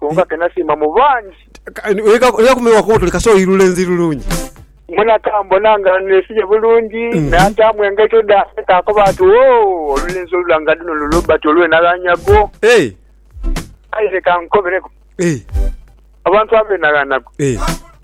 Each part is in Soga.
Bonga ke nasiima mu bangi. Oidha kumiwa kubo tuli kasita oli lulenzi lulungi. Mwena kambona nga neesibye bulungi, naataamu engaito dhange, kaakoba ati, Woo, olulenzi olulanga dhuno lu Robert olwenaghanyago! Aye leka nkobereku abantu abeenaghanagwa.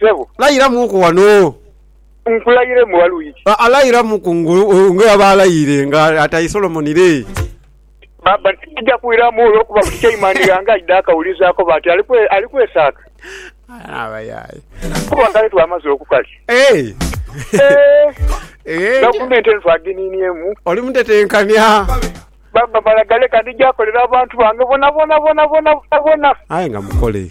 Sebo. Layiramuuku wano. Nkulayire mbu waliwo iki? Aa, layiramuku nga bweyaba alayire nga ataye Solomoni lee. Baba, tija kuiramu olwokuba buli kyaima ndi ghange aidha akawuliza akoba ati ali kwesaaka. Abayaye. Kuba kale twamaze okukali. Eeh. Eeh. Gavumenti eno twagininiemu. Oli mutetenkania. Baba, mala galeka ndija kolera abantu bange bona bona bona bona bona bona. Aye nga mukole.